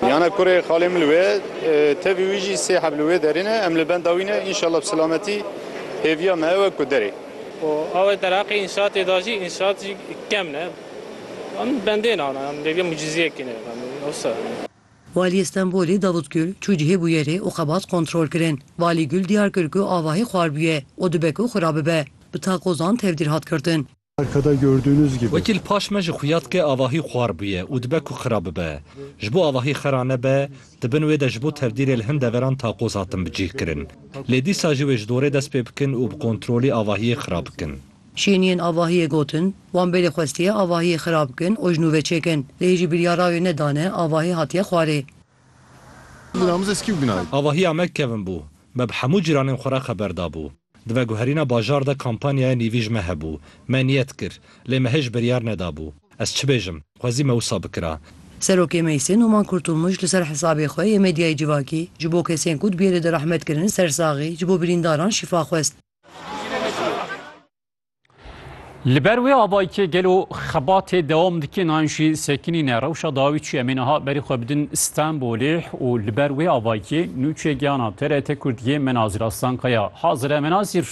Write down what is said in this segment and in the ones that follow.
Miyane kurê xalê min li wê ye, tevî wî jî sê heb li wê derê ne, em li benda wî ne, înşallah bi silametî hêviya me ew e ku derê. Û ew e derheqê înşaatê de jî, înşaat jî kem ne, em bendê ne ana, em bêgê mucîzeyekê ne, em wisa. Waliyê Stenbolê Davut Gül çû cihê bûyerê û xebat kontrol kirin. Valî Gül diyar kir ku avahî xwar bûye û dibe ku xwe rabibe. Bi takozan tevdîr hat girtin. Arkada gördüğünüz gibi. Wekî li paş me jî xuya dike avahî xwar bûye û dibe ku xira bibe. Ji bo avahî xira nebe, di bin wê de ji bo tevdîrê li hin deveran taqoz hatin bicîhkirin. Lê dîsa jî wê ji dorê dest pê bikin û bi kontrolî avahiyê xira bikin. Şêniyên avahiyê gotin, Wan belê xwestiye avahiyê xira bikin û ji nû ve çêkin. Lê hêjî biryara wê nedane, avahî hatiye xwarê. Avahîya me kevn bû. Me bi hemû cîranên xwe re xeber dabû. Di veguherîna bajar de kampanyaya nîvî ji me hebû. Me niyet kir. Lê me hê ji biryar nedabû. Ez çi bêjim? Xwezî me wisa bikira. Serokê Meyse Numan Kurtulmuş li ser hesabê xwe yê medyayê civakî ji bo kesên ku di biyê de direhmet kirin sersaxî ji bo birîndaran şîfa xwest. Li ber wê avayikê gelo xebatê dewam dike nan jî sekinîne rewşa dawî çi emê niha berî xwe bidin Stenbolê û li ber wê avayikê nûçe giyana TRT Kurdiyê Menazîr Aslankaya hazire Menazîr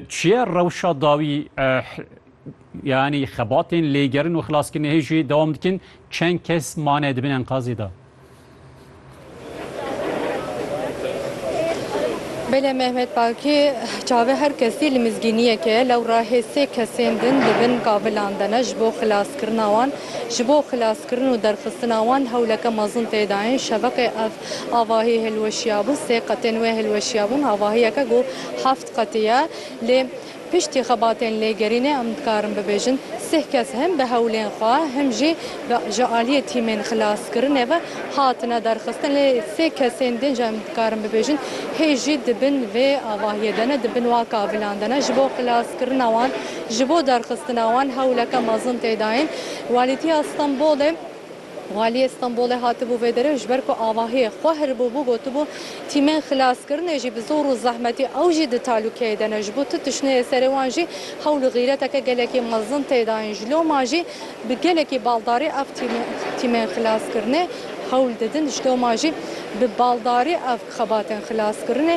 çi ye rewşa dawî yanî xebatên lêgerin û xilaskirinê hê jî dewam dikin çend kes mane di bin enkazê de? Belê Mehmet Bakî çavê her kesî li mizgîniyeke ye. Lewra hê sê kesên din di bin kavilan de ne ji bo xilaskirina wan. Ji bo xilaskirin û derxistina wan hewleke mezin tê dayîn. Şeveqê ev avahî hilweşiyabû. Sê qetên wê hilweşiyabûn. Avahiyeke ku heft qetî ye. Lê Piştî xebatên lêgerînê em dikarin bibêjin sih kes him bi hewlên xwe him jî ji aliyê tîmên xilaskirinê ve hatine derxistin lê sê kesên din jî em dikarin bibêjin hê jî di bin vê avahiyê de ne di bin wa kavilan de ne ji bo xilaskirina wan ji bo derxistina wan hewleke mezin tê dayîn Walîtiya Stenbolê Waliyê Stenbolê hatibû vê derê û ji ber ku avahiyê xwe hiribûbû gotibû, Tîmên xilaskirinê jî bi zor û zehmetî ew jî di talûkeyê de ne. Ji bo tu tişneyê serê wan jî hewl û xîreteke gelekî mezin tê dayîn. Ji loma jî bi gelekî baldarî ev tîmên xilaskirinê hewl didin. Ji loma jî bi baldarî ev xebatên xilaskirinê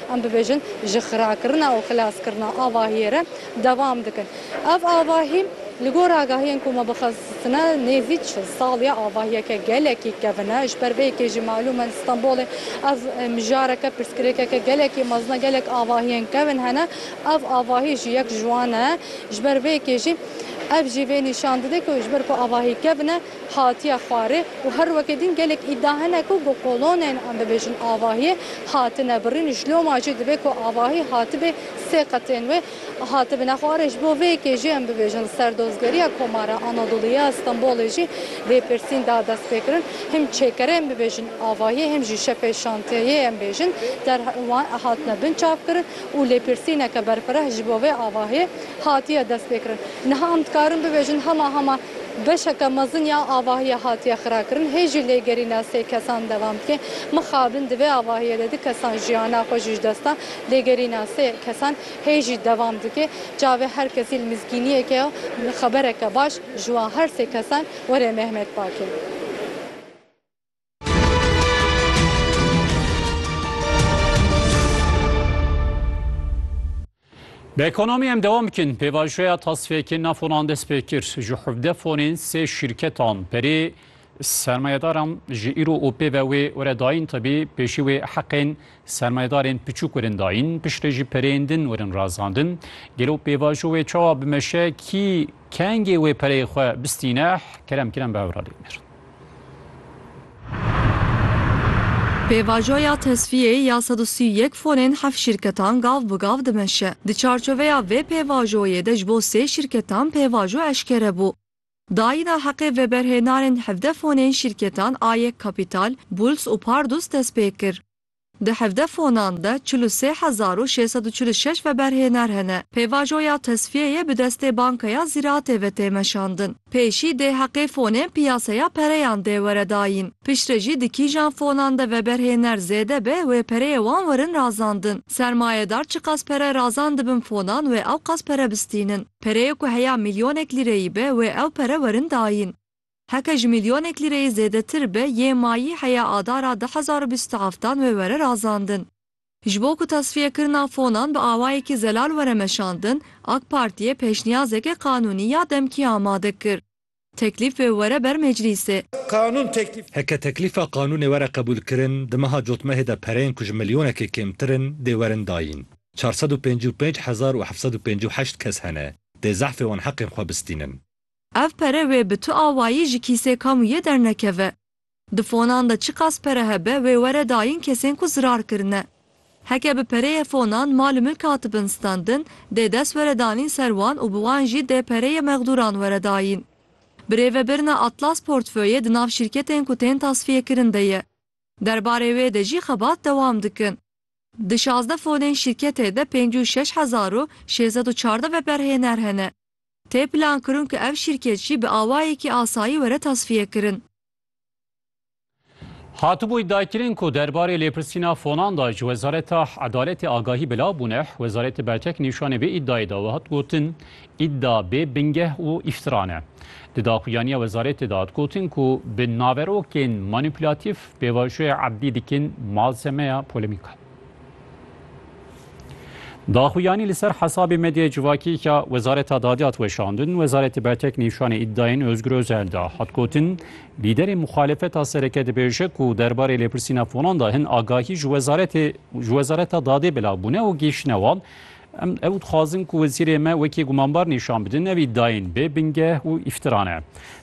Em bibêjin ji xirakirina û xilaskirina avahiyê re devam dikin. Ev avahî li gor agahiyên ku me bixwestine nêzî çil sal ye. Avahiyeke gelekî kevin e. Ji ber vê yekê jî malûm e li Stenbolê ev mijareke pirsgirêkeke gelekî mezin e. Gelek avahiyên kevin hene. Ev avahî jî yek ji wan e. Ji ber vê yekê jî ev jî vê nîşan dide ku ji ber ku avahî kevin e, hatiye xwarê û her weke din gelek îda hene ku bi kolonên em bibêjin avahiyê hatine birîn, ji loma jî divê ku avahî hatibê sê qetên wê hatibine xwarê. Ji bo vê yekê jî em bibêjin li ser dozgeriya Komara Anadolûyê ya Stenbolê jî vê pirsîn da destpêkirin him çêkerê em bibêjin avahiyê him jî şepê şantiyeyê em bêjin der hatine binçavkirin. û lêpirsîneke berfireh ji bo vê avahiyê hatiye destpêkirin. Niha em dikarin bibêjin hema hema beşeke mezin ya avahiyê hatiye xirakirin. Hê jî lêgerîna sê kesan devam bike. Mixabin di vê avahiyê de du kesan jiyana xwe ji dest dan. Lêgerîna sê kesan hê jî devam dike. Çavê her kesî li mizgîniyeke ye û xebereke baş ji wan her sê kesan were Mehmet Bakê. Bi ekonomî em dewam bikin. Pêvajoya tasfiyekê nafonan dest pê kir. Ji hevdeh fonên sê şîrketan berê sermayedaran ji îro û pê ve wê were dayîn tebî pêşî wê heqên sermayedarên piçûk werin dayîn piştre jî pereyên din werin razandin. Gelo pêvajo wê çawa bimeşe kî Kengê wê pereyê xwe bistîneh kerem kiren bi ewra lênir. Pêvajoya tesfiyê ya sed û sî û yek fonên heft şîrketan gav bi gav dimeşe. Di çarçoveya vê pêvajoyê de ji bo sê şîrketan pêvajo eşkere bû. Dayîna heqê veberhênanên hevdeh fonên şîrketan a yek Kapital, Bulls û Pardus dest pê kir. Di hevdeh fonan de çil û sê hezar û şêst sed û çil û şeş veberhêner hene. Pêvajoya tesfiyeyê bi destê Bankeya Zîratê ve tê meşandin. Pêşî dê heqê fonên piyaseya pereyan dê were dayîn. Piştre jî di kîjan fonan de veberhêner zêde be wê pereyê wan werin razandin. Sermayedar çiqas pere razandibin fonan wê ewqas pere bistînin. Pereyê ku heya mîlyonek lîreyî be wê ew pere werin dayîn. Heke ji milyonek lîreyê zêdetir be yê mayî heya adara du hezar û bîst û heft dan wê were razandin. Ji bo ku tasfiyekirina fonan bi awayekî zelal were meşandin, AK Partiyê pêşniyazeke qanûnî ya demkî amade kir. Teklîf wê were ber meclîsê. Qanûn teklîf. Heke teklîfa qanûnê were qebûlkirin, di meha cotmehê de pereyên ku ji milyonekê kêmtir in dê werin dayîn. Çar sed û pêncî û pênc hezar û heft sed û pêncî û heşt kes hene dê zehfê wan heqên xwe bistînin. Ev pere wê bi tu awayî ji kîsê kamûyê dernekeve. Di fonan de çiqas pere hebe wê were dayîn kesên ku zirar kirine. Heke bi pereyê fonan mal û milk hatibin standin, dê dest were danîn ser wan û bi wan jî dê pereyê mexdûran were dayîn. Bi rêvebirina Atlas portföyê di nav şîrketên ku tên tasfîyekirin de ye. Derbarê wê de jî xebat dewam dikin. Di şazdeh fonên şîrketê de pêncî û şeş hezar û şêz sed û çardeh veberhêner hene. Tê plankirin ku ev şîrket jî bi awayekî asayî were tasfiyekirin. Hatibûy Daykirin ku der barê lêpirsîna fonan de ji Wezareta Edaletê agahî bila bûne, Wezaretê Bertek nîşanê vê îdayê da û hat gotin, Îda bê bingeh û îftiran e. Di daxuyaniya Wezaretê de hat gotin ku bi naverokên manîpûlatîf pêvajoya erdî dikin malzemeya polemikan. Daxuyanî li ser hesabê medyaya civakî ya Wezareta Dadê hat weşandin, Wezaretê Bertek nîşanê îdayên Ozgur Ozel da. Hat gotin, Lîderê muxalefeta sereke dibêje ku derbarê lêpirsîna fonan de hin agahî ji Wezaretê ji Wezareta Dadê belav bûne û gihîştine wan, Em ew dixwazin ku wezîrê me wekî gumanbar nîşan bidin, ev îdayên bê bingeh û îftira ne.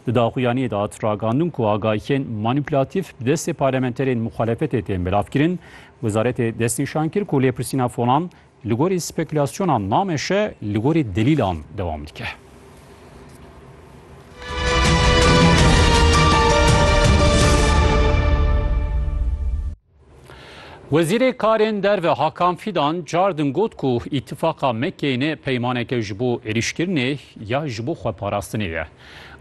Di daxuyaniyê de hat ragandin ku agahiyên manîpulatîf bi destê parlamenterên muxalefetê tên belavkirin. Wezaretê destnîşan kir ku lêpirsîna fonan li gorî spekülasyonan nameşe, li gorî delîlan dewam dike. Wezîrê Karên Derve Hakan Fîdan cardin got ku Îtîfaqa Mekeyne peymaneke ji bo êrîşkirinê ya ji bo xweparastinê ye.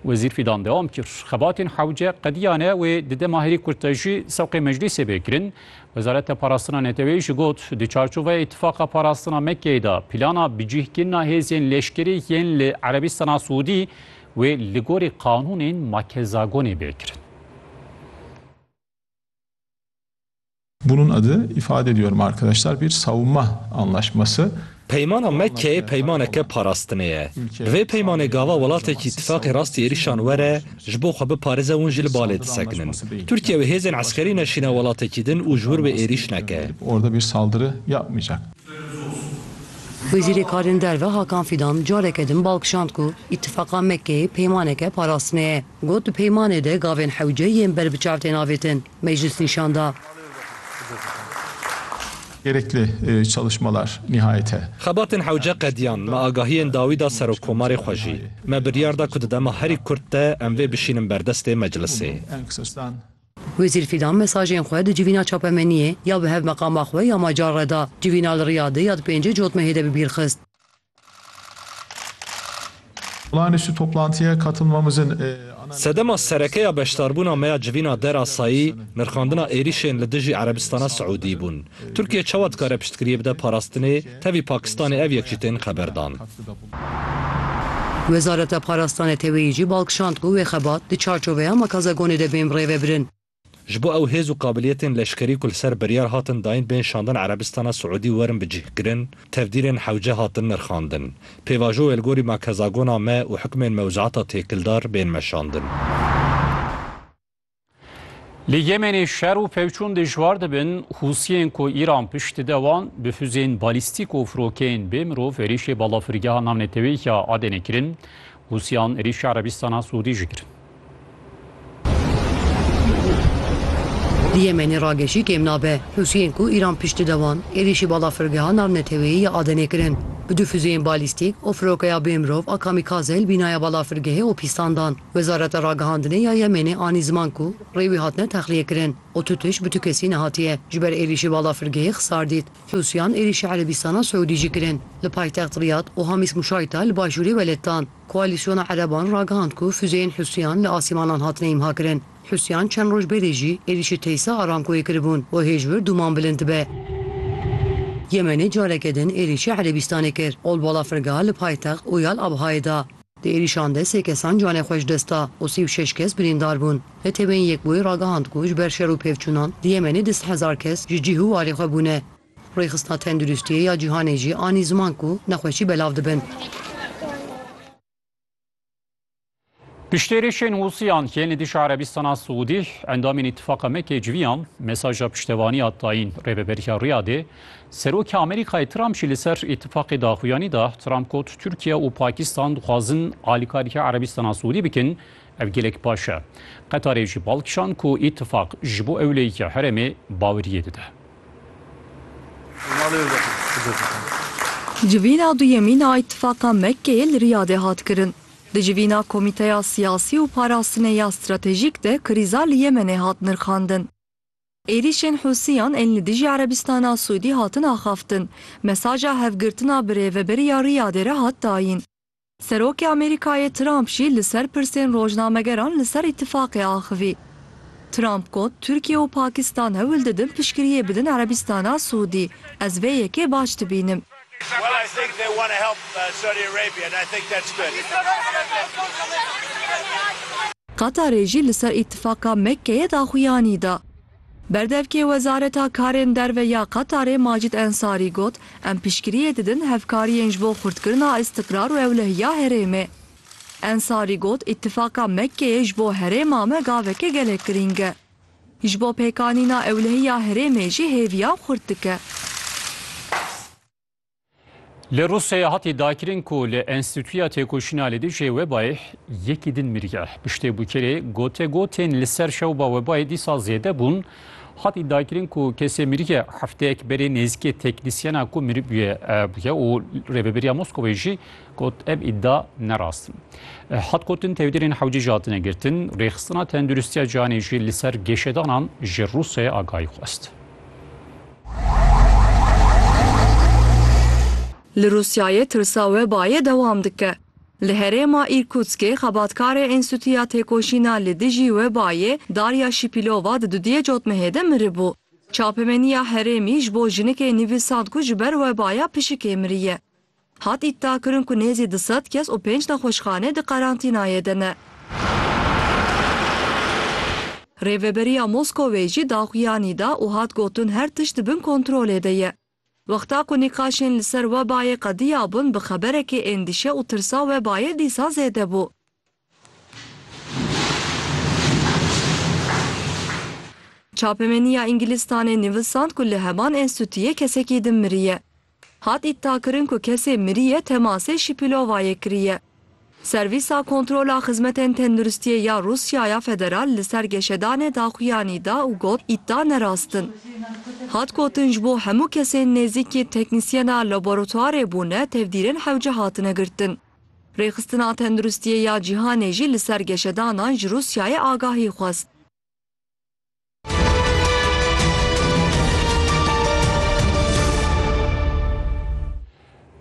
Wezîr Fîdan dewam kir, Xebatên hewce qediyane wê di dema herî kurt de jî sewqê meclîsê bê kirin. Wezareta Parastina Neteweyî jî got, di çarçoveya Îtîfaqa Parastina Mekeyê de plana bicihkirina hêzên leşkerî yên li Erebîstana Siûdî wê li gorî qanûnên Makezagonê bê kirin. Bunun adı ifade ediyorum arkadaşlar bir savunma anlaşması. Peymana Mekkeyê peymaneke parastinê ye. Bi vê peymanê gava welatekî îtîfaqê rastî êrîşan were ji bo xwe biparêze hûn jî li balê disekinin. Tirkîye wê hêzên eskerî neşîne welatekî din û ji wir wê êrîş neke. Wezîrê Karên Derve Hakan Fîdan careke din balkişand ku îtîfaqa Mekkeyê peymaneke parastinê ye. Got, Di peymanê de gavên hewce yên ber bi çav tên avêtin. Meclis nîşan da. Gerekli çalışmalar nihayete. Xebatên hewce qediyan, me agahiyên dawî da Serokkomarê xwe jî. Me biryar da ku di dema herî kurt de em vê bişînin berdestê Meclisê. Wezîr Fîdan mesajên xwe di civîna çapemeniyê ya bi hev meqama xwe ya macar re da, civîna li Riyadê ya di pêncê cotmehê de bi bîr xist. Sedema sereke ya beşdarbûna me ya civîna derasayî, nirxandina êrîşên li dijî Erebistana Siûdî bûn. Tirkiye çawa dikare piştgiriyê bide parastinê, tevî Pakistanê ev yek jî tên xeberdan. Wezareta Parastana Teveyî jî bal kişand ku wê xebat di çarçoveya Makazagonê de bên birêvebirin. Ji bo ew hêz û qabiliyetên leşkerî ku li ser biryar hatin dayîn bên şandin Erebistana Siûdî werin bicihkirin, tevdîrên hewce hatin nirxandin. Pêvajo wê li gorî makezagona me û hukmên mewzuata têkildar bên meşandin. Li Yemenê şer û pevçûn dijwar dibin, Hûsiyên ku Îran pişt dide wan bi fuzeyên balîstîk û firokeyên bê mirov êrîşê balafirgeha navneteweyî ya Adenê kirin Hûsiyan êrîşa Erebîstana Sûdî jî kirin. Di Yemenê ragejî kêm nabe. Hûsiyên ku Îran piştî de wan, êrîşî balafirgeha navneteweyî ya Adenê kirin. Bi du fuzeyên balîstîk û firokeya bêmirov a kamîkaze li bînaya balafirgehê û pîstan dan. Wezareta Ragihandinê ya Yemenê anî ziman ku rê wî hatine texliyekirin û tu tişt bi tu kesî nehatiye ji ber êrîşî balafirgehê xisar dît. Husiyan êrîşa Erebîstana Siûdî jî kirin li paytext Riyad û Hamîs Mûşayta li başûrê weletdan. Koalîsyona Ereban ragihand ku fuzeyên Husiyan li asîmanan hatine îmhakirin. Husiyan çend roj berê jî êrîşê Teysa Aramcoyê kiribûn û hêj wir dûman bilind dibe. Yemenê careke din êrîşa Erebîstanê kir ol bala firga li paytext Ûyal Abhayê da. Di êrîşan de sê kesan canê xwe ji dest da û sî û şeş kes birîndar bûn. Neteweyên Yekbûyî ragihand ku ji ber şer û pêvçûnan di Yemenê du sed hezar kes ji cih û warê xwe bûne. Rêxistina Tenduristiyê ya Cîhanê jî anî ziman ku nexweşî belav dibin. Piştî êrîşên Hûsiyan yên li dijî Erebistana Siûdî, endamên Îtîfaqa Mekkeyê civiyan mesaja piştevaniya dayîn Rêveberiya Riyadê. Serokê Amerîkayê Trump jî li ser Îtîfaqê daxuyanî da. Trump got, Tirkiye û Pakistan dixwazin alîkarî Erebîstana Siûdî bikin, ev gelek baş e. Qetarê jî bal kişand ku Îtîfaq ji bo ewleyîkê herêmê baweriyê dide. Civîna duyemîn a Îtîfaqa Mekkeyê li Riyadê hat kirin. Di civîna Komîteya Siyasî û Parastinê ya Stratejîk de krîza li Yemenê hat nirxandin. Êrîşên Hûsiyan ên li dijî Erebîstana Sûdî hatin axaftin, mesaja hevgirtina bi rêveberî ya Riyadê re hat dayîn. Serokê Amerîkayê Trump jî li ser pirsên rojnamegeran li ser îtîfaqê axivî. Trump got, Tirkiye û Pakistan hewil didin piştgiriyê bidin Erebîstana Sûdî. Ez vê yekê baş dibînim. Qatarê jî li ser Îtîfaka Mekkeyê daxuyanî da. Berdevkê Wezareta Karên Derve ya Qatarê Macîd Ensarî got, Em piştgiriyê didin hevkariyên ji bo xurtkirina îstikrar û ewlehiya herêmê. Ensarî got, Îtîfaka Mekkeyê ji bo herêma me gaveke gelek girîng e. Ji bo pêkanîna ewlehiya herêmê jî hêviyan xurt dike. Li Rûsyayê hatî dakirin ku li Enstîtuya Têkoşîna li dijî webayê yekî din miriye. Piştê bûkerê gotegotên li ser şewba webayê dîsa zêde bûn, hatî dakirin ku kesê miriye hefteyek berê nêzîkê teknîsyena ku miribûye bûye û Rêveberiya Moskovayê jî Got ev îdia ne rast in. Hat gotin tevdîrên hewcî ji hatine girtin, rêxistina tenduristiya cihanê jî li ser gêşedanan ji Rûsyayê agahî xwest. Li Rûsyayê tirsa webayê dewam dike. Li herêma Îrkûtskê xebatkarê Enstîtuya Têkoşîna li dijî Webayê Darya Şîpîlova di dudiyê cotmehê de miribû. Çapemeniya herêmî ji bo jinikê nivîsand ku ji ber webaya pişikê miriye. Hat îdiakirin ku nêzî du sed kes û pênc nexweşxane di qerantînayê de ne. Rêveberiya Moskowê jî daxuyanî da û hat gotin her tişt di bin kontrolê de ye. Wexta ku nîqaşên li ser webayê qediyabûn bi xeberekî êndîşe û tirsa webayê dîsa zêde bû. Çapemeniya Îngilîstanê nivîsand ku li heman enstîtuyê kesekî din miriye. Hat îddiakirin ku kesê miriye temasê Şîpîlovayê kiriye. Servîsa Kontrola Xizmetên Tenduristiyê ya Rûsyaya Federal li ser geşedanê daxuyanî da û got îddia nerast in. Hat gotin ji bo hemû kesên nêzîkî teknîsyena laboratuarê bûne tevdîrên hewce hatine girtin. Rêxistina Tenduristiyê ya Cîhanê jî li ser geşedanan ji Rûsyayê agahî xwest.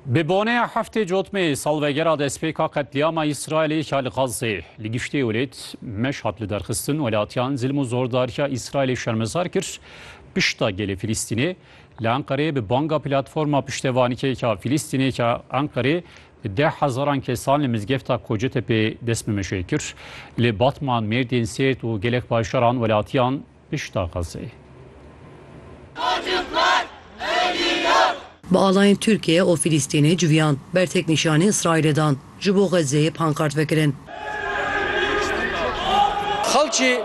Bi boneya heftê cotmeyê salvegera destpêka qetlîama Îsraîlê ya li Xazzê li giştê welêt meş hat liderxistin, welatiyan zilm û zordariya Îsraîlê şermezar kir, pişta gelê Filîstînê Li Enqereyê bi banga Platforma Piştevanîkêka Fîlîstînêka Enqerê bi deh hezaran kesan li mizgefta Kocetepe destnimijê kir. Li Batman, Mêrdîn, Sêrt û gelek bajaran welatiyan pişta Xezeyê. Bi alayên Tirkiyê û Fîlîstînê civiyand, bertek nîşanî Îsraîlê dan. Ji bo Xezzeyê pankart vekirin. Xalçî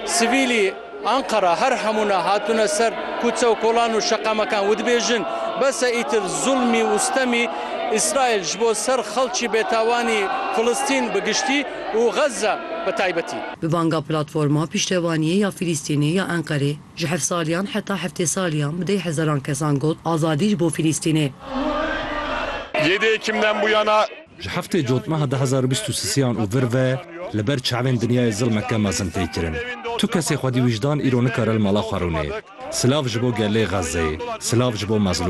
sivîlî Anqara her hemûna hatine ser kûçe û kolan û şeqemekan û dibêjin, Bes e îtir zûlmî û sitemî Îsraîl ji bo ser xalçî bêtawanî Filistîn bi giştî û Xezze bi taybetî. Bi banga Platforma Piştevaniyê ya Filistînê ya Enqerê, Ji hevsaliyan heta heftêsaliyan bi deh hezaran kesan got, Azadî ji bo Fîlîstînê! Yêdê kim dem bû yana? Ji heftê cotmeha du hezar û bîst û sisiyan û vir ve li ber çavên dinyayê zilmeke mezin tê kirin. Tu kesê xwedî wijdan îro nikare li mala xwe rûnê. Silav ji bo gelê Xezzeyê. Silav ji bo mezlûman.